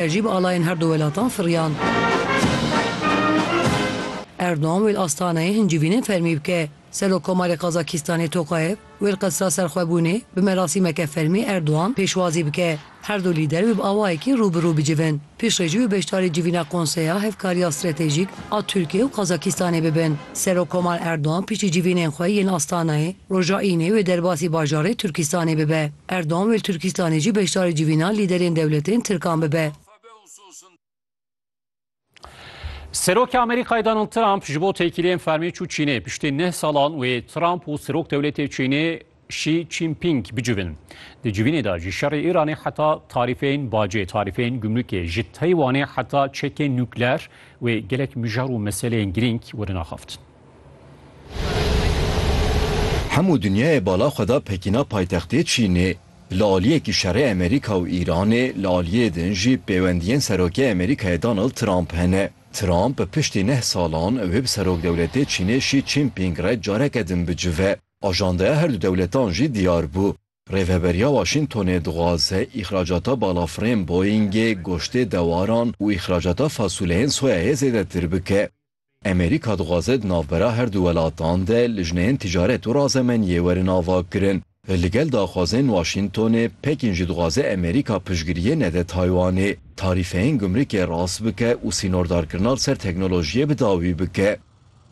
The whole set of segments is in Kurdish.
Ev jî bi alayên herdu welatan firiyan. Erdogan wê li Astanayê hin civînên fermî bike. Serokkomarê Qazakîstanê Tokayev wê li Qesra Serxwebûnê bi merasîmeke fermî Erdogan pêşwazî bike. Herdu lîder wê bi awayekî rû bi rû bicivin. Piştre jî wê beşdarî civîna Konseya Hevkariya Stratejîk a Tirkiye û Qazakîstanê bibin. Serokkomar Erdogan piştî civînên xwe yên Astanayê, roja Înê wê derbasî bajarê Tirkîstanê bibe. Erdogan wê li Tirkîstanê jî beşdarî civîna lîderên dewletên Tirkan bibe. Serokê Amerîkayê Donald Trump ji bo têkiliyên fermî çû Çînê. Piştî neh salan wê Trump û Serok Dewletê Çînê Xi Jinping bicivin. Di civînê de ji şerê Îranê heta tarîfeyên bacê, tarîfeyên gumrûkê, ji Taywanê heta çekên nukleer wê gelek mijar û meseleyên girîng werin axaftin. Hemû dinyayê bala xwe da Pekîna paytextê Çînê. Li aliyekî şerê Amerîka û Îranê, li aliyê din jî pêwendiyên Serokê Amerîkayê Donald Trump hene. Trump piştî neh salan wê bi Serokdewletê Çînê Xi Jinping re careke din bicive. Ajandaya herdu dewletan jî diyar bû. Rêveberiya Waşîngtonê dixwaze îxracata balafirên Boeingê, goştê dewaran û îxracata fasuleyên soyayê zêdetir bike. Amerîka dixwaze di navbera her du welatan de lijneyên ticaret û razemeniyê werin avakirin. Li gel daxwazên Waşîngtonê, Pekîn jî dixwaze Amerîka piştgiriyê nede Taywanê, tarîfeyên gumrikê rast bike û sînordarkirina li ser teknolojiyê bi dawî bike.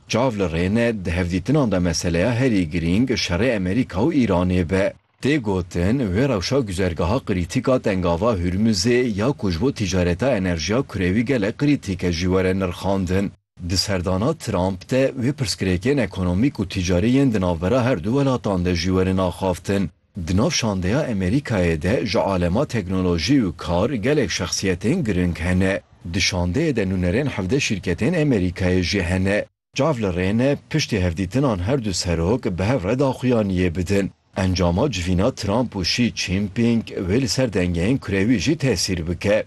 Çav li rê ne, di hevdîtinan de meseleya herî girîng şerê Amerîka û Îranê be. Tê gotin, vê rewşa guzergaha krîtîk a Tengava Hurmuzê ya ku ji bo tîcareta enerjiya kurewî gelek krîtîk e jî were nirxandin. Di serdana Trump de wê pirsgirêkên ekonomîk û tîcarî yên di navbera her du welatan de jî werin axaftin. Di nav şandeya Amerîkayê de ji alema teknolojî û kar gelek şexsiyetên girîng hene. Di şandeyê de nûnerên hevdeh şîrketên Amerîkayê jî hene. Çav li rê ne piştî hevdîtinan her du serok bi hev re daxuyaniyê bidin. Encama civîna Trump û Xi Jinping wê li ser dengeyên kurewî jî tesîr bike.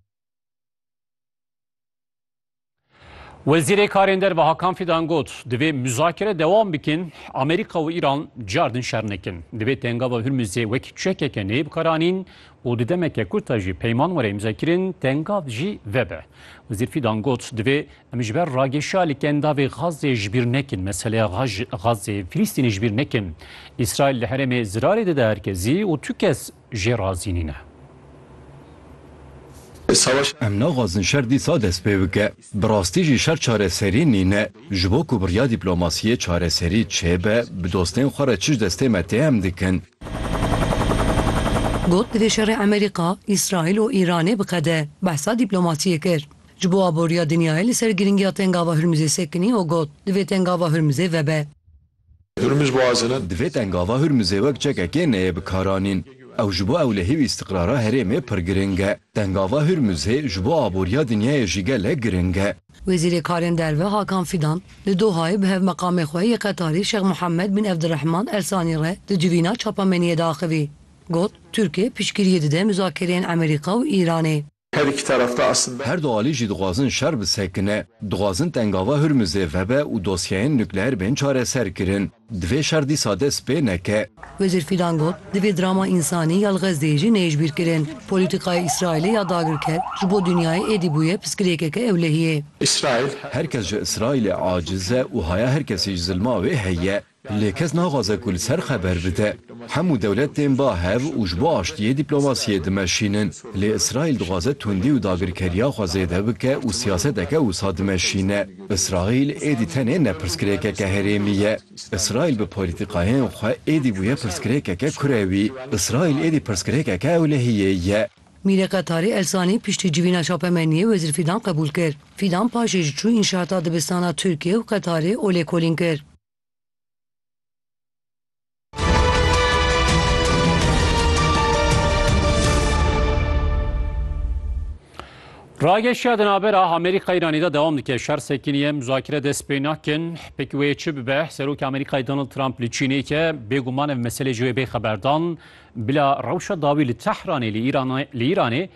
Wezîrê Karên Derve Hakan Fidan got, Divê muzakere dewam bikin, Amerîka û Îran car din şer nekin. Divê tengava Hurmuzê wek çekeke neyê bikaranîn û di demeke kurt de jî peyman were îmzekirin, tengav jî vebe. Wezîr Fidan got, Divê Em ji ber rageşa li kendavê Xazzê ji bîr nekin, meseleya Xazzê Filîstînê ji bîr nekin. Îsraîl li herêmê zirarê dide her kezî û tu kes jê razî nîne. Em naxwazin şer dîsa dest pê bike. Bi rastî jî şer çareserî nîne. Ji bo ku bi riya dîplomasiyê çareserî çêbe, bi dostên xwe re çi ji destê me tê em dikin. Got, Divê şerê Amerîka, Îsraîl û Îranê biqede. Behsa dîplomasiyê kir. Ji bo aboriya dinyayê li ser girîngiya Tengava Hurmizê sekinî û got, Divê Tengava Hurmizê vebe. Divê Tengava Hurmizê wek çekekê neyê bikaranîn. Ew ji bo ewlehî û îstiqrara herêmê pir girîng e. Tengava Hurmizê ji bo aboriya dinyayê jî gelek girîng e. Wezîrê Karên Derve Hakan Fidan li Dohayê bi Hevmeqamê xwe yê Qetarî Şex Muhammed bin Evdirehman El Sanî re di civîna çapameniyê de axivî got, Tirkiye piştgiriyê dide muzakereyên Emerîka û Îranê. Her iki taraf da aslında. Her du alî jî dixwazin şer bi sekine. Dixwazin tengava Hurmuzê vebe û dosyeyên nukleer bên çareser kirin. Divê şer dîsa dest pê neke. Wezîr Fîdan got, Divê drama însanî ya li Xezdeyê jî neyişbîr kirin. Polîtîkaya Îsraîlê ya dagirker ji bo dinyayê êdî bûye piskirêkeke ewlehiyê. Îsraîl. Her kes ji Îsraîlê aciz e û haya her kesî ji zilma wê heye. Lê kes naxwaze ku li ser xeber bide. Hemû dewlet tên ba hev û ji bo aştiyê dîplomasiyê dimeşînin. Lê Îsraîl dixwaze tundî û dagirkeriya xwe zêde bike û siyaseteke wisa dimeşîne. Îsraîl êdî tenê ne pirsgirêkeke herêmî ye. Îsraîl bi polîtîkayên xwe êdî bûye pirsgirêkeke kurewî. Îsraîl êdî pirsgirêkeke ewlehiyê ye. Mîrê Qetarî Elsanî piştî civîna Şapemeniyê Wezîr Fîdan qebûl kir. Fîdan paşê jî çû înşaata dibistana Tirkiye û Qetarê û lêkolîn kir. Rageşiya di navbera Amerîka Îranî de dewam dike şer sekiniye muzakire dest pê nakin pek wê çi bibe serokê Amerîkayê Donald Trump li Çînê ke bêguman ev meselê ji wê bê xeberdan bila rewşa dawî li Tehranê li Îranê